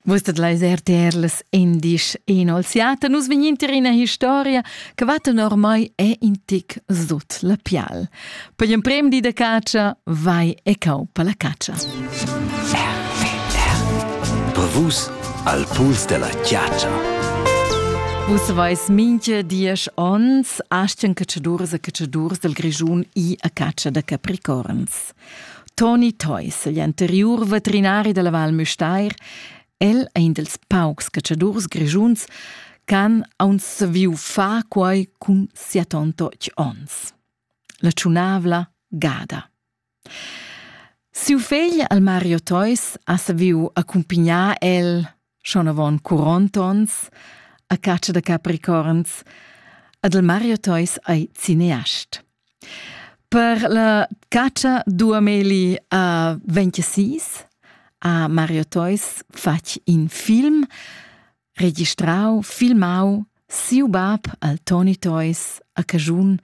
Vus dat leis RTR las endisch inolziata. Nus vegninter ina historia che va tenor mai è in tic sut la pial. Per l'emprem di da caccia vai e cau per la caccia. Per vus al puls della chiaccia. Vus vais minche diesch ons aschen cacciadurs e cacciadurs del Grischun i a caccia da capricorns. Toni Theus, igl anteriur veterinari dalla Val Müstair, el è in dels paucs cacciadurs grischuns ch'han aunc saviu far quei cun sia tontotg ons. La tschunavla gada. Siu fegl al Mario Theus ha saviu accumpignar el schon avon 40 ons a caccia da capricorns ad el Mario Teus ei cineast. Per la caccia duameli a 26 a Mario Teus fatg in film, registrau, filmau, siu bab al Tony Toys a Cajun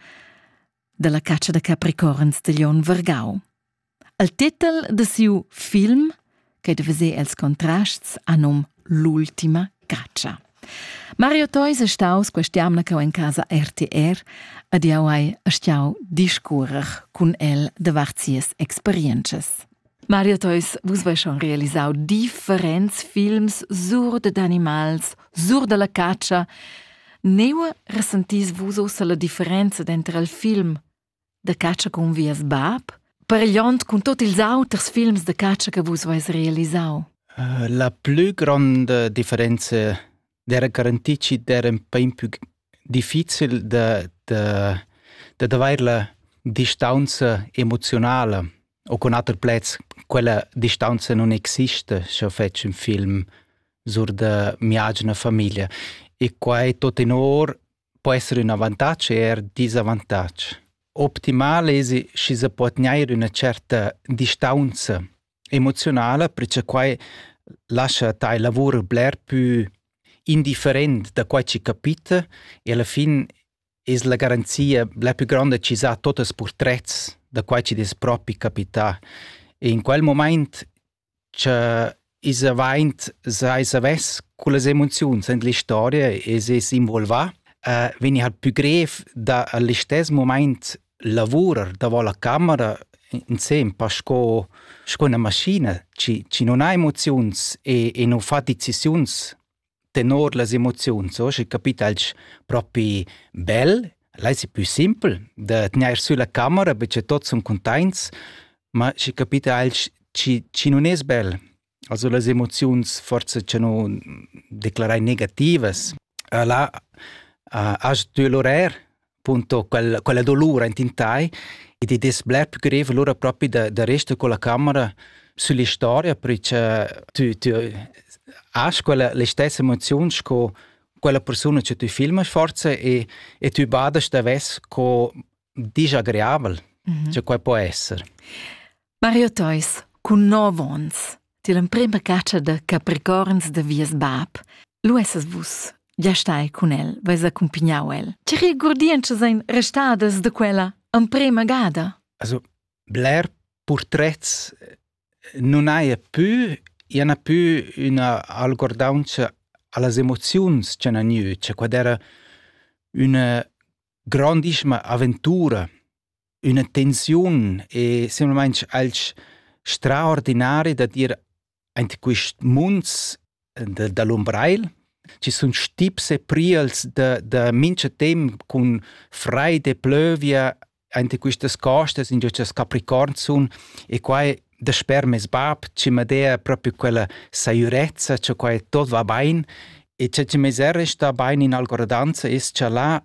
dalla caccia da capricorns de Leon Vergau. El tetel da siu film che deva se els contrasts a num L'ultima caccia. Mario Theus è staus quest'jamna che in casa RTR ed jau hai stiau discurrer cun el davart sias experiences. Mario Theus, vus voi schon realisau differents films sur de animals, sur della caccia. Neu resentis vus ossa la differenza entre il film da catscha cun vies bab, paregliond cun tot ils auters films da catscha che vus veis realisau? Uh, la plü gronda differenza era garantì che era un pain più difficil da, da, da avere la distanza emotionale o con altri plets quella distanza non existe se feci un film sur da mia agina famiglia e qua è tot in or po esser ün avantatg e eir disavantatg. Optimal esi schi se po tgnair üna certa distaunza emoziunala, perche quai lascha tai lavur bler pü indifferent da quai chi capita e alla fin es la garanzia la pü gronda chi sa tuot ils purtrets da quai chi'd es propi capità. E in quel momaint cha i's avaint seis avess cullas emoziuns in l'istoria e s'es involvà, vegni ha'l pü grev da a listess mumaint lavurer davo la camera insembel sco sco üna maschina chi chi nun ha emoziuns e e nu fa decisiuns tenor las emoziuns, oh, sche capitalch propi bel, l'ais pü simpel da tgnair sü la camera, be che tots sun cuntaints, ma schi capitalch chi, chi nun es bel. Also las emoziuns forsa cha nu declarai negativas. E là uh, has tü l'orair punto quella, quella dolura in tintai ed id es bler più grev lura propi da, da resta con la camera sulla storia perché tu, tu has quella le stessa emozione sco quella persona che tu filmas forza e, e tu badas da ves co disagreabel mm -hmm. che quai può essere. Mario Theus, con 9 ans, ti l'emprima caccia da Capricorns da vies bab, lu essas vus gia stai cun el, veis accumpagnau el. Tgi guardientschas ein restadas da quella emprema gada? Also, bler purtrets non haja più, i ha più una algordaunza allas emoziuns che han gnü, cioè quad era una grandissima avventura, una tensiun e semplamain alch straordinari da dir Aint quist munds da, da l'Umbrail ci sun stips e priels da, da mincha temp cun fraid e plövia aint quistas costas ingio cha's capricorns sun e quai dasper meis bap chi m'ha deia propi quella saiurezza cha quai tot va bain e cha chi m'es er restà bain in Algordanza es cha là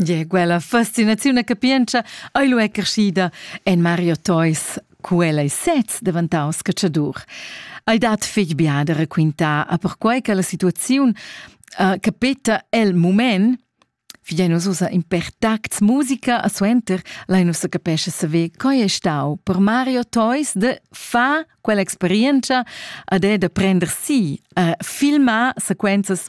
Gie, quella fascinaziun e capientscha ei lu è crescida en Mario Theus. Quella ei sez daventaus catschadur. Ei dat fetg bia da raquintar a perquei che la situaziun uh, capeta el mument Figei nus ussa in per tacts musica a suenter, lai nus capesce saver coi è stau per Mario Toys de fa quell'experienza ad è da prender si a filmar sequenzas